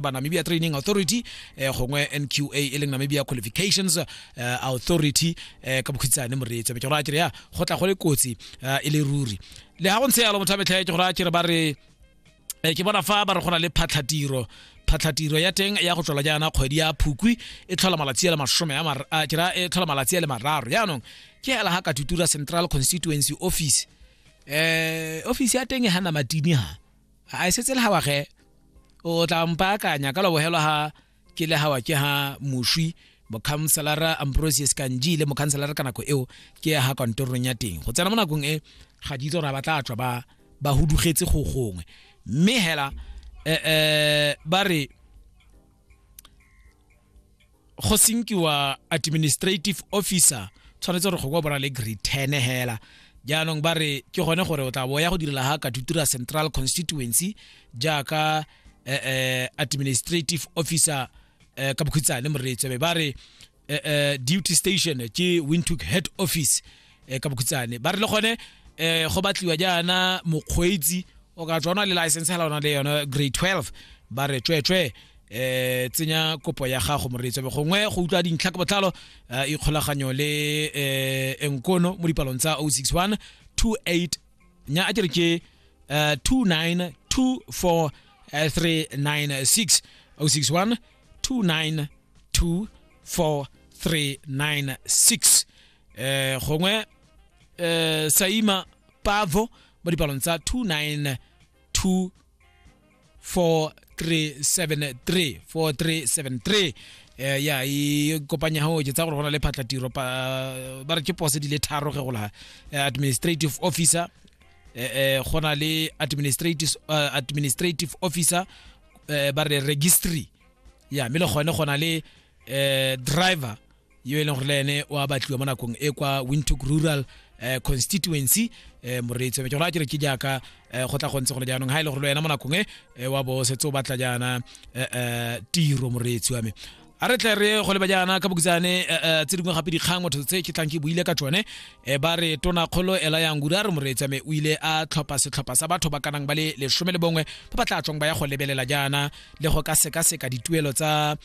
ba namibia training authority eh, gongwe nqa e leng namibia qualifications eh, authority eh, ka bokhutshane moreetso be ke gore a kere ya go tla go le kotsi eh, e le ruri le ga go ntshe yalo motho a metlhae ke gore a kere ba re eh, ke bona fa ba re go na le phatlhatiro phatlhatiro ya teng ya go tlhola jaana kgwedi ya phukwi e tlhola malatsi a le masome a mar- a kera e tlhola malatsi a le mararo jaanong ke hela ga katutura central constituency office eh office ya teng e hana matini ha a e setse le ga wage o tla mpaakanya ka lobogelwa ga ke le gawa ke ga moswi mokhanselara ambrosius kanji le mokhanselara ka nako eo ke ya ga kantorong ya teng go tsena mo nakong e ga di itse gore ba tla tswa ba ba hudugetse go gongwe mme hela eh, eh ba re go senkiwa administrative officer tshwanetse gore go kwa bona le grade 10 hela jaanong ba re ke gone gore o tla bo ya go direla ga katutura central constituency jaaka eh, eh, administrative officer eh, ka bokhutsa le moreetsebe ba re eh, eh, duty station ke windhoek head office eh, ka bokhutsane ba re le gone um go batliwa jaana mokgweetsi o ka tswana le license hela ona le yona grade 12 ba re tswetswe eh tsenya kopo ya gago moreetso be gongwe go utlwa dintlha ka botlalo eh, ikgolaganyo le eh enkono mo dipalong tsa 061 28 nya a ke re ke eh, 2924396 061 2924396 eh gongwe eh saima pavo mo dipalong tsa 292 4373 4373 eh ya i kopanya ho je tsa gore gona le phatla tiro pa ba re ke pose di le tharo ge gola eh, administrative officer eh eh gona le administrative uh, administrative officer eh, ba re registry ya mme le gone gona le eh driver yo e leng gore le ene wa batliwa mo nakong e kwa windhoek rural eh, constituency eh, moreetsi wa me ke gore a kere ke jaaka eh, go tla go ntse gone jaanong ga e le gore le wena mo nakong e eh, wa bo setse o batla jaana eh, eh, tiro moreetsi wa me a re tle re go leba jaana ka bokutsane eh, eh, tse dingwe gape dikgang motho tse ke tlang ke buile ka tsone eh, ba re tona kgolo ela yang gure a re moreetsi wa me o ile a tlhopha setlhopha sa batho ba kanang ba le lesome le bongwe ba ba tla tswang ba ya go lebelela jaana le go ka sekaseka dituelo tsa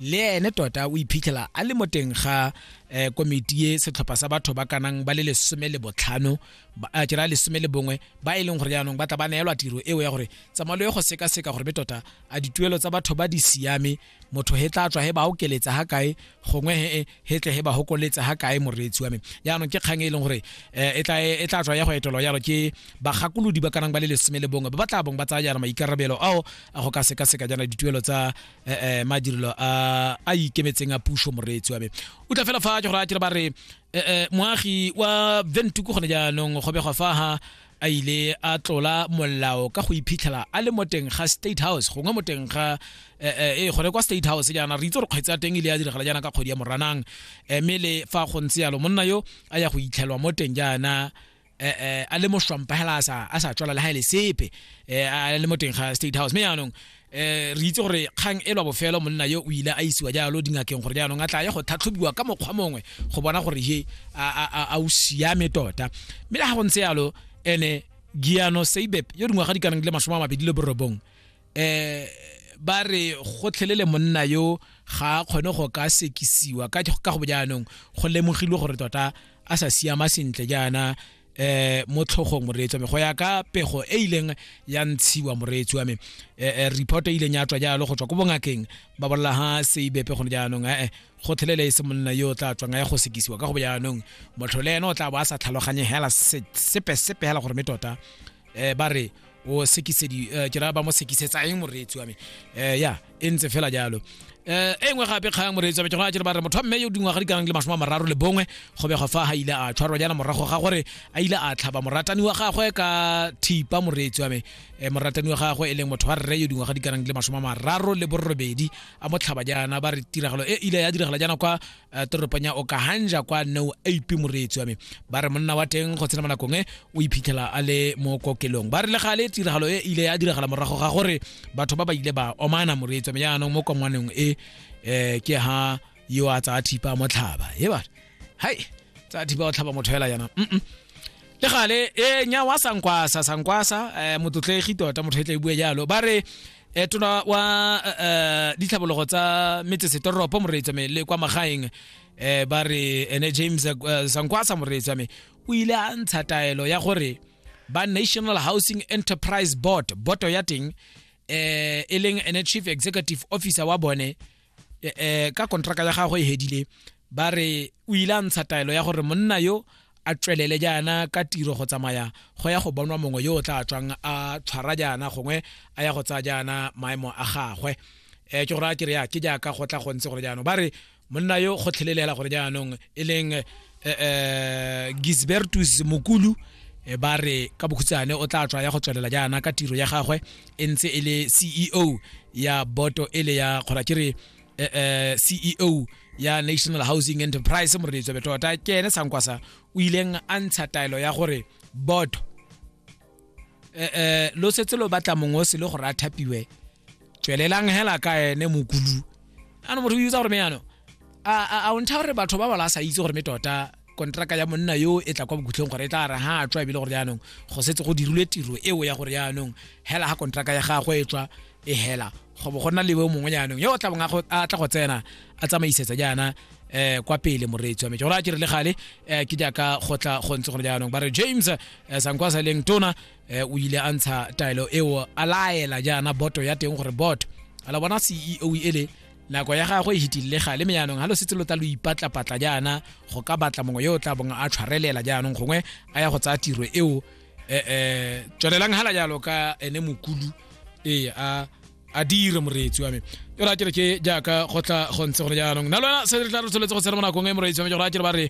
le ene tota o iphitlhela a le mo teng ga eh, komiti e setlhopha sa batho ba kanang ba le lesome le botlhano eh, ke raya lesome le bongwe ba e leng gore jaanong ba tla ba neelwa tiro eo ya gore tsamalo e go sekaseka gore be tota a dituelo tsa batho ba di siame motho he tla tswa he ba okeletsa ga kae gongwe he he tle he ba hokoletsa ga kae moreetsi wa me jaanong ke kgang e leng gore eh, e tla e tla tswa ya go etelwa yalo ke bagakolodi ba kanang ba le lesome le bongwe ba ba tla bong ba tsaya jaana maikarabelo ao a go ka sekaseka jaana dituelo tsa eh, eh, madirelo a a ikemetseng a puso moreetsi wa me o tla fela fa ke gore a kere ba re eh, eh, moagi wa ventuku gone jaanong go begwa fa ha a ile a tlola molao ka go iphitlhela a le mo teng ga state house gongwe mo teng ga eh, eh, eh, gone kwa state house jaana re itse gore kgwetse ya teng ile ya diragala jaana ka kgwedi ya moranang Eh, mme le fa go ntse yalo monna yo a ya go itlhelwa mo teng jaana eh, eh, a le moshwampa hela a sa a sa tswala le ha ile sepe eh, a le mo teng ga state house me yanong eh re itse gore kgang e lwa bofelo monna yo o ile a isiwa jalo dingakeng gore jaanong a tla ye go tlhatlhobiwa ka mokgwa mongwe go bona gore he a o siame tota mme le ga go ntse yalo ene giano seibep yo dingwaga di kanang le masome a mabedi le borobong eh ba re gotlhelele monna yo ga a kgone go ka sekisiwa ka ka go jaanong go lemogilwe gore tota a sa siama sentle jaana eh mo tlhogong moreetsi wa me go ya ka pego e ileng ya ntshiwa moreetsi wa me eh, eh, report e ileng ya tswa jalo go tswa ko bongakeng ba bolela ha seibepe gone jaanong ee gotlhelele e se monna yo o tla tswang a ya go sekisiwa ka go jaanong motlho le ene o tla bo a sa tlhaloganye hela se- sepe sepe hela gore me tota eh ba re o sekisedi eh, ke raya ba mo sekisetsa eng moreetsi wa me eh ya e ntse fela jalo eh e nngwe gape kgang moreetsi wa me ke gona jere ba re motho wa mme yo dingwaga di kanang le masome a mararo le bongwe go begwa fa ga ile a tshwarwa jaana morago ga gore a ile a tlhaba moratani wa gagwe ka thipa moreetsi wa me eh, moratani wa gagwe e leng motho wa rre yo dingwaga di kanang le masome a mararo le borobedi a mo tlhaba jaana ba re tiragalo e ile ya diragala jaana kwa eh, toropong ya okahanja kwa neo ap moreetsi wa me ba re monna wa teng go tsena mo nakong e o iphitlhela a le mo kokelong ba re le gale tiragalo e ile ya diragala morago ga gore batho ba ba ile ba omana moreetsi wa me jaanong mo kongwaneng e um ke ha yo a tsaya thipa motlhaba e ba hai tsaya thipa o tlhaba motho fela jaana mm le gale e nya wa sankwasa sankwasa eh, motlotlegi tota motho e tla e bua jalo ba re eh, tona wa eh, eh, ditlhabologo tsa metsesetoropo moreetsa me le kwa magaeng eh, ba re ene james eh, sankwasa moreetsa me o ile a ntsha taelo ya gore ba national housing enterprise board boto ya teng eh, e leng ene chief executive officer wa bone eh, eh, ka kontraka ya gagwe e hedile ba re o ile a ntsha taelo ya gore monna yo a tswelele jaana ka tiro go tsamaya go ya go bonwa mongwe yo o tla tswang a tshwara jaana gongwe a ya go tsaya jaana maemo a gagwe um ke gore a kere ya ke jaaka go tla gontse gore jaanong ba re monna yo go tlhelelela gore jaanong e leng um gisbertus mokulu ba re ka bokhutsane o tla tswa ya go tswelela jaana ka tiro ya gagwe e ntse e le ceo ya boto e le ya kgora ke re eh, eh, ceo ya national housing enterprise moreletso betota ke ene sankwasa o ileng a ntsha taelo ya gore boto eh, eh, lo setse lo batla mongwe o se le gore a thapiwe tswelelang hela ka ene mokulu ano motho o itsa gore me yano a a- a o ntsha gore batho ba bala a sa itse gore me tota kontraka ya monna yo e tla kwa bokhutlhong gore e tla ra ha tswa ebile gore jaanong go setse go dirilwe tiro eo ya gore jaanong hela ga kontraka ya gagwe e tswa e hela go bo go nna lewe mongwe jaanong yo o tla bong a tla go tsena a tsamaisetsa jaana eh kwa pele moreetsi wa me gore a ke re le gale eh ke jaaka go tla go ntse gore jaanong ba re james eh, sankwa sa leng tona eh, o ile a ntsha taelo eo a laela jaana boto ya teng gore boto a la bona ceo ele nako ya gagwe e hitilile gale me yaanong ga lo setse lo tla lo ipatlapatla jaana go ka batla mongwe yo o tla bong a tshwarelela jaanong gongwe a ya go tsaya tiro eo um eh, eh, tswelelang hala jalo ka ene mokulu ee a a dire moreetsi wa me yo ra kere ke jaaka go tla go ntse gone jaanong na lona se re tla re tsholetse go tsena mo nakong e moreetsi wa me go ra kere ba re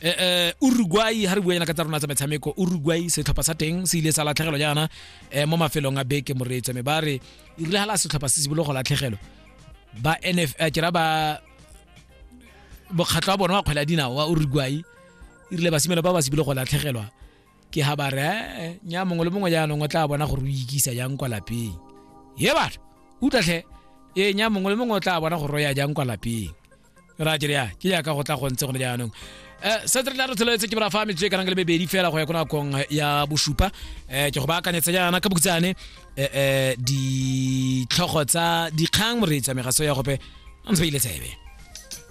Eh, eh, uruguay ha re buena ka tsa rona tsa metshameko uruguay setlhopha sa teng se ile sa latlhegelwa jaana eh, mo mafelong a beke moreetso me ba re e rile hala setlhopha se simolola go latlhegelwa ba nf eh, kera ba bokgatlho wa bona wa kgwela dinao wa uruguay e rile basimelo ba ba simolola go latlhegelwa ke ha ba re eh, nya mongwe le mongwe jaanong o tla bona gore o ikisa jang kwa lapeng ye batho utlwatlhe ee nya mongwe le mongwe o tla bona gore o ya jang kwa lapeng ra ke ya ke ya ka go tla go ntse gone jaanong um se re tla re tlholetse ke bora fa metse e kanang le mebedi fela go ya ko nakong ya bosupa um ke go baakanyetsa jaana ka bokutsane um ditlhogo tsa dikgang moreetsi ya megaso ya gope a ntse ba ile tsebe